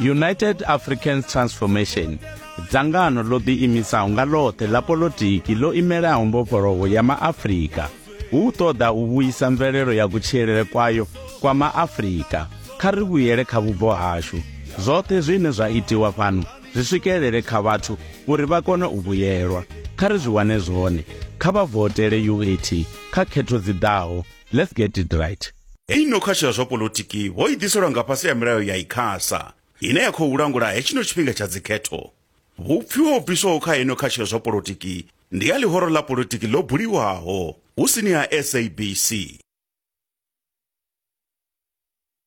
united african transformation dzangano ḽo ḓiimisaho nga ḽoṱhe ḽa polotiki ḽo imelaho mbofholowo ya maafrika hu ṱoḓa u vhuisa mvelelo ya kutshilele kwayo kwa maafrika kha ri vhuyele kha vhubvo hashu zwoṱhe zwine zwa itiwa fhano zwi swikelele kha vhathu uri vha kone u vhuyelwa kha ri zwi wane zwone kha vha votele uat kha khetho dzi ḓaho Let's get it right. Ei no khasho ya zwa polotiki vho i ḓiselwa nga fhasi ya milayo ya ICASA ine ya khou langula hetshino tshifhinga tsha dzikhetho. Vhupfiwa ho bviswaho kha ino khasho ya zwa polotiki ndi ya ḽihoro ḽa polotiki ḽo buliwaho hu sini ha SABC.